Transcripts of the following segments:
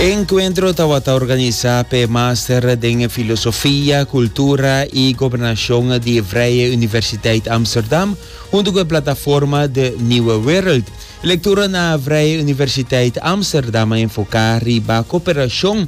E enkuentro tabata organisá p'e Master den Filosofia, Kultura i Gobernashon di Vrije Universiteit Amsterdam huntu ku e plataforma De Nieuwe Wereld. Lektura na Vrije Universiteit Amsterdam a enfoká riba koperashon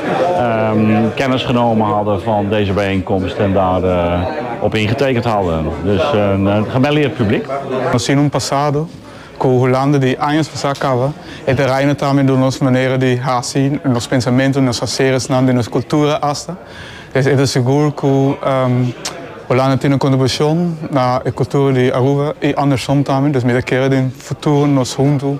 Kennis genomen hadden van deze bijeenkomst en daar op ingetekend hadden. Dus een gemelleerd publiek. Nos tin un pasado cu Hulanda di años pasa caba e terreino tambe door nos manera di haci, nos pensamento, nos haceresnan, den nos cultura hasta. Des e ta segur cu Hulanda tin un contribucion na e cultura di Aruba y andersom tambe. Dus mi ta kere den futuro nos hunto.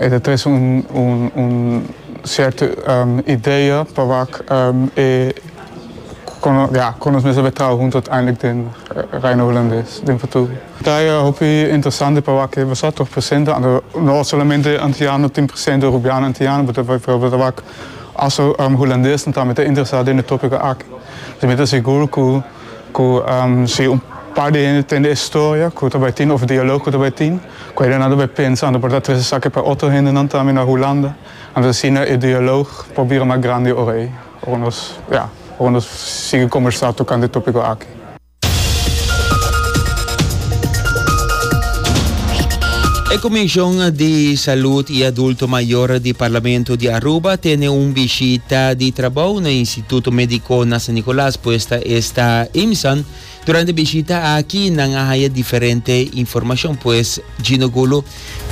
E ta trece un cierto idea pa wak e con nos mes a bay traha hunto uiteindelijk den Reino Holandés den futuro. Ta e hopi interesante pa wak e basa tur presente anto no solamente antiano tin presente Rubiano antiano but ta probo ta wak also Holandesnan tambe ta interesa den e topico aki. Pasobra mi ta sigur cu si un par di hende tende e historia cu ta bay tin of dialog cu ta bay tin. Cu eda nan ta bay pensa anto por ta tres esaki pa otro hendenan tambe na Hulanda, anto asina e dialoog por bira mas grandi ora ey, ora nos, ya, ora nos sigui combersa tocante e topico aki. E Comision di Salud y Adulto Mayor di Parlamento di Aruba tene un bishita di trabou na Instituto Medico na San Nicolas, puesta esta, IMSAN, Durante e bishita aki nan a haña diferente informashon, pues Gino Gulo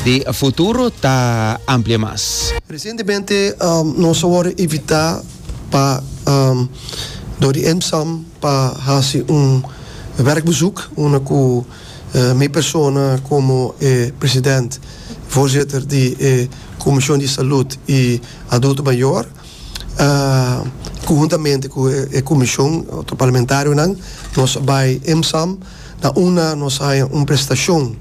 di Futuro ta amplia mas. Resientemente nos a wòrdu invitá pa dor di EMSAM pa hasi un wèrkbesùk unda ku mi persona komo e president, voorzitter, di e Komishon di Salud i Adulto Mayor, Conjuntamente cu e comision, otro parlamentarionan, nos bay EMSAM. Na una nos haya un prestacion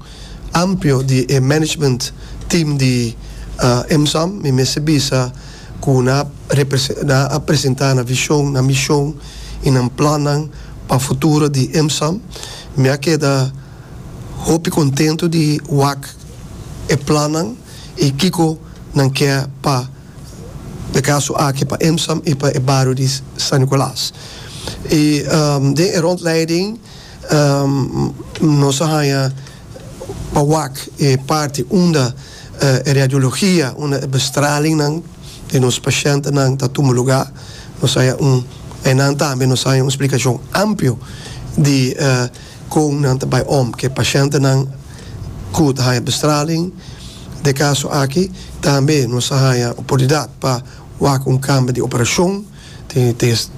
amplio di e management team di EMSAM. Mi mester bisa cu nan a presenta nan vision, nan mision y nan plannan pa futuro di EMSAM. Mi a keda hopi contento di wak e plannan y kico nan kier pa. de kaso aki pa Emsam i pa e bario di San Nicolas. I den e rondleiding nos a haña pa wak e parti unda e radiologia, unda e bestralingnan di nos pashentenan ta tuma lugá. Nos haña un, einan tambe nos haña un splikashon amplio di. Kon nan ta bai om ku e pashentenan ku ta haña bestraling? Den e kaso aki tambe nos a haña oportunidat pa wak un kambio di operashon.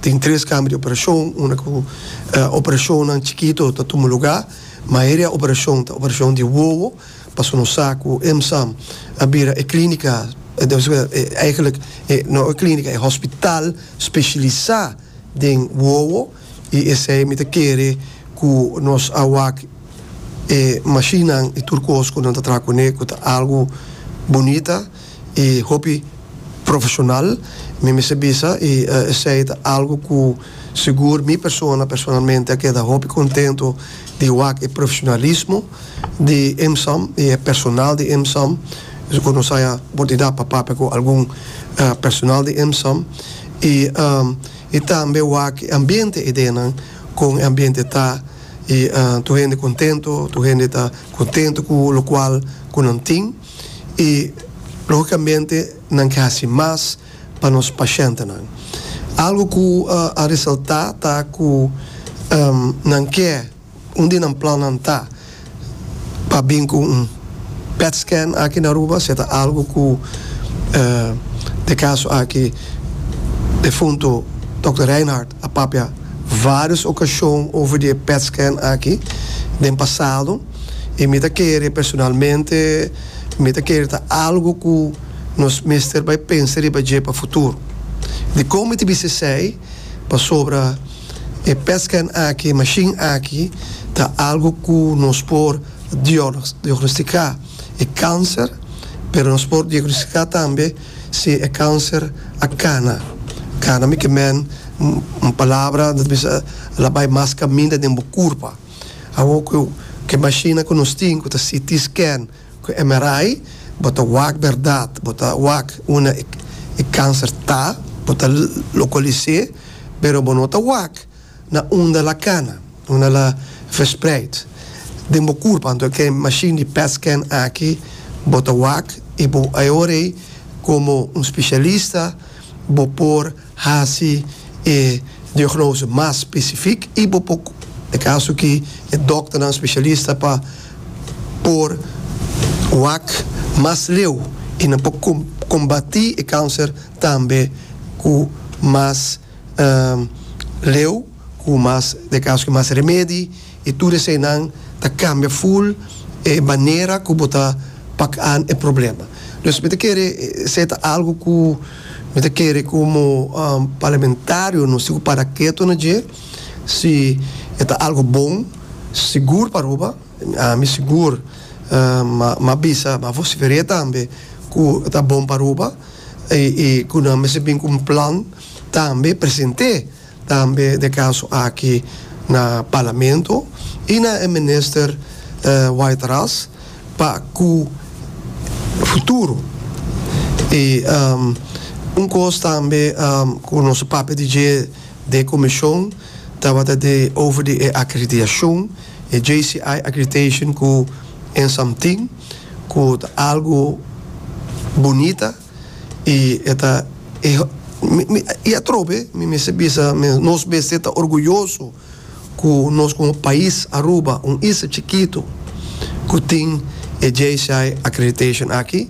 Tin tres kambio di operashon unda ku operashonnan chikito ta tuma lugá. Mayoria operashon ta operashon di wowo pasobra nos sa ku EMSAM a bira e klínika, no e klínika, e hospital speshilisá den wowo. I esei mi ta kere ku nos a wak e mashinnan i tur kos ku nan ta traha kuné ku ta algu bunita i hopi profeshonal. Mi mester bisa i esei ta algu ku sigur mi persona personalmente a keda hopi kontentu di wak e profeshonalismo di EMSAM i e personal di EMSAM. Esei ku nos haya oportunidad pa papia ku algun personal di EMSAM i I tambe wak e ambiente idenan kon e ambiente ta i tur hende kontento, tur hende ta kontento ku lokual ku nan tin i logikamente nan ke hasi mas pa nos pashentenan. Algu ku a resalta ta ku nan ke. Un di nan plannan ta pa bin ku un pet scan aki na Aruba, si e ta algu ku e kaso aki defuntu Dòkter Rijnhard a papia vários okashon over di e pet scan aki den pasado i mi ta kere personalmente mi ta kere ta algu ku nos mester bai pensa riba dje pa futuro. Dikon mi ta bis'esei? Pasobra. E pescan aki, e mashin aki ta algo cu nos por diagnostica e cancer, pero nos por diagnostica tambe si e cancer a cana. Cana mica men un palabra ta bisa la bay mas caminda den bo curpa. Awo cu e mashinnan cu nos tin cu ta CT scan, Cu MRI bo ta wak berdad, bo ta wak una e cancer ta, bo ta locolisé, pero bo no ta wak na unda la cana, unda la verspreid den bo curpa. Anto ke machine di pet scan aki bo ta wak y bo a e ora ey como un specialista bo por. Hasi e diagnose mas specific y bo por e caso aki e dokternan specialista pa por wak mas leu y nan por combati e cancer tambe cu mas leu. Cu mas de cas cu mas remedi y tur eseinan ta cambia full e manera cu bo ta pacan e problema. Dus mi ta kere esei ta algo cu mi ta kere como Parlamentarionan si cu para keto na dje, si e ta algo bon, sigur pa Aruba, ami sigur m'a bisa, m'a vocifer'e tambe cu ta bon pa Aruba y cu nan mester bin cu un plan tambe present'e Tambe na e kaso aki na Parlamento i na e Minister White Ras pa ku futuro. I un kos tambe ku nos a papia di dje den komishon tabata di over di e akreditashon, e JCI accreditation ku Ensamtin ku ta algu bunita. y e ta e y atrobe mi mester bisa mes nos mester ta orguyoso cu nos como pais Aruba un isla chikito cu tin e JCI accreditation aki.